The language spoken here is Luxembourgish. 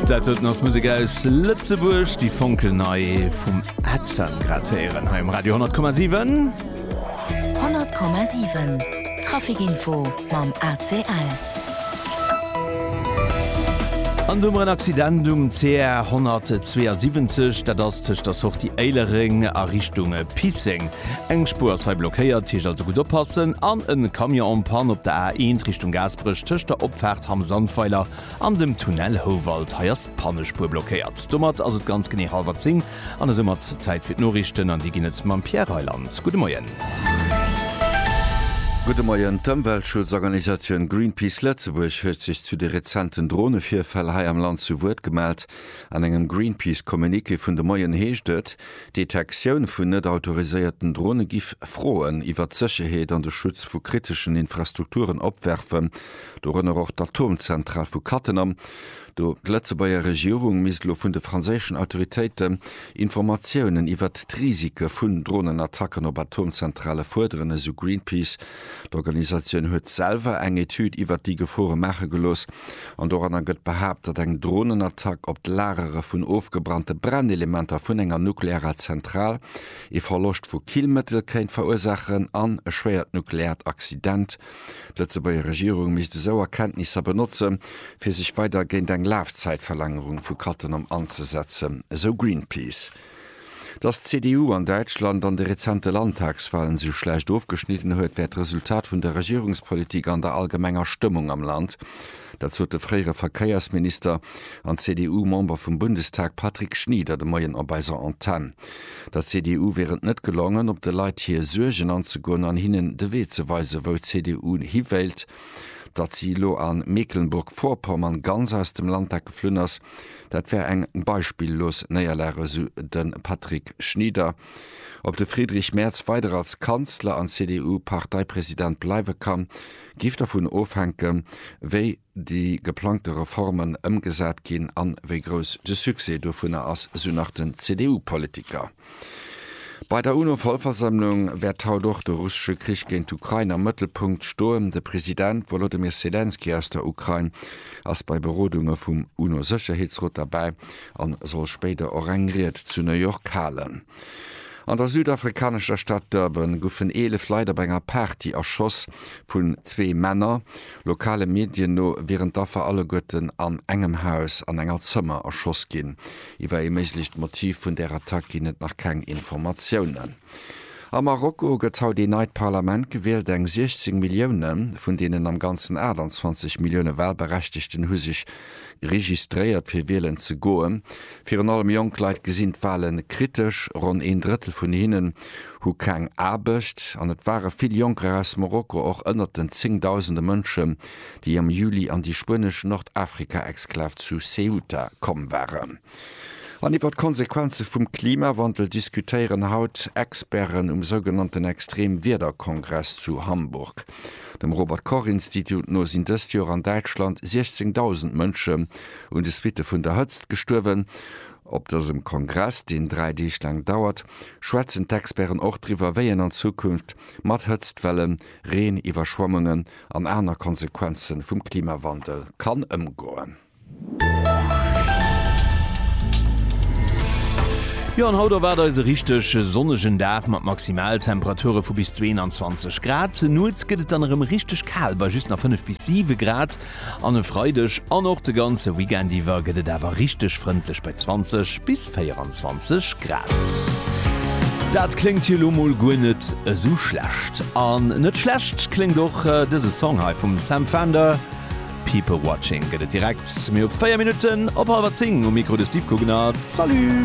Dat huet ass Musik aus Lëtzebuerg, déi Fonkel nei vum Äzer gratéieren heim Radio 10,7. 10,7 Trafikinfo mam ACL. An dummer en Accident um CR 172, dat ass tëscht der Sortie Éilereng a Richtung Pisseng. Eng Spuer ass hei blockéiert, heescht also gutt oppassen. An en Camion en panne op der A1 Richtung Gaasperech tëscht der Opfaart Hamm-Sandweiler An dem Tunnel Houwald, hei ass d'Pannespuer blockéiert. Domat ass et ganz genee hallwer 10 an esou mat Zäit fir d'Noriichten an déi ginn et mam Pierre Reyland. Gudde Moien. Gudde Moien. D'Ëmweltschutzorganisatioun Greenpeace Lëtzebuerg huet sech zu de rezenten Dronevirfäll hei am Land zu Wuert gemellt. An engem Greenpeace Communiqué vun de Moien heescht et, d'Detektioun vun net autoriséierten Drone giff Froen iwwert d'Sécherheet an de Schutz vu kriteschen Infrastrukturen opwerfen. dorënner och d'Atomzentral vu Cattenom, do d'Lëtzebuerger Regierung misst elo vun de franséischen Autoritéite Informatiounen iwwert d'Risike vun Dronenattacken op Atomzentrale fuerderen, esou Greenpeace. D'Organisatioun huet selwer eng Etüd iwwert déi Gefore maache gelooss an doranner gëtt behaapt, datt eng Dronenattack op d'Lagere vun ofgebrannte Brennelementer vun enger nuklearer Zentral ee Verloscht vu Killmëttel kéint verursaachen an e schwéiert nukleaart Accident D'Lëtzebuerger Regierung misst esou Erkenntnisser benotze fir sech weider géint eng Lafzäitverlängerung vu Cattenom anzesetzen, esou Greenpeace. Datt d'CDU an Däitschland an de rezente Landtagswalen esou schlecht ofgeschnidden huet, wär d'Resultat vun der Regierungspolitik an der allgemenger Stëmmung am Land. Dat sot de fréiere Verkéiersminister an CDU-Member vum Bundestag Patrick Schnieder de Moien op eiser Antenn. Der CDU wier et net gelongen, op de Leit hir Suergen anzegoen an hinnen de Wee ze weisen, wou d'CDU hi wéilt. Datt si elo a Mecklenburg-Vorpommern ganz aus dem Landtag geflunn ass, dat wär eng beispillos Néierlag, esou de Patrick Schnieder. Ob de Friedrich Merz weider als Kanzler an CDU-Parteipresident bleiwe kann, géif dovun ofhänken, wéi déi geplangte Reformen ëmgesat ginn an wéi grouss de Succès dovunner ass, esou nach den CDU-Politiker. Bei der UNO-Vollversammlung wäert haut och de russesche Krich géint d'Ukrain am Mëttelpunkt stoen. De President Wolodymyr Selenskyj aus der Ukrain ass bei Berodunge vum UNO-Sécherheetsrot derbäi an soll spéider och eng Ried zu New York halen. An der südafrikanescher Stad Durban goufen 11 Leit op enger Party erschoss vun zwee Männer. Lokale Medien no wieren d'Affer alleguerten an engem Haus an enger Zëmmer erschoss ginn. Iwwer ee méiglecht Motiv vun där Attack ginn et nach keng Informatiounen. A Marokko gëtt haut een neit Parlament gewielt. Eng 16 Millioune vun deenen am Ganzen 28 Millioune Walberechtegten hu sech registréiert, fir wielen ze goen. Virun allem jonk Leit gesinn d'Wale kritesch. Ronn een Drëttel vun hinnen hu keng Aarbecht an et ware vill Jonker aus Marokko och ënnert den zéngdausende Mënschen, déi am Juli an déi spuenesch Nordafrika-Exklav zu Ceuta komm waren. An iwwer d'Konsequenze vum Klimawandel diskutéieren haut Experten um sougenannten Extremwiederkongress zu Hamburg. Dem Robert-Koch-Institut no sinn dëst Joer an Däitschland 16.000 Mënschen un de Suitte vun der Hëtzt gestuerwen. Op dësem Kongress, deen dräi Deeg laang dauert, schwätzen d'Experten och driwwer, wéi een an Zukunft mat Hëtztwellen, Reen, Iwwerschwemmungen an aner Konsequenze vum Klimawandel kann ëmgoen. Jo, an haut erwaart eis e richteg sonnegen Dag mat Maximaltemperature vu bis 22 Grad. Nuets gëtt et dann erëm richteg kal, bei just nach 5 bis 7 Grad. An e Freideg an och de ganze Weekend iwwer gëtt et awer richteg frëndlech bei 20 bis 24 Grad. Dat kléngt jo lo mol guer net esou schlecht. An net schlecht kléngt och dëse Song hei vum Sam Fender. People Watching gëtt et direkt, mee op 4 Minutten op hallwer 10 um Mikro de Steve Guggenard. Salut!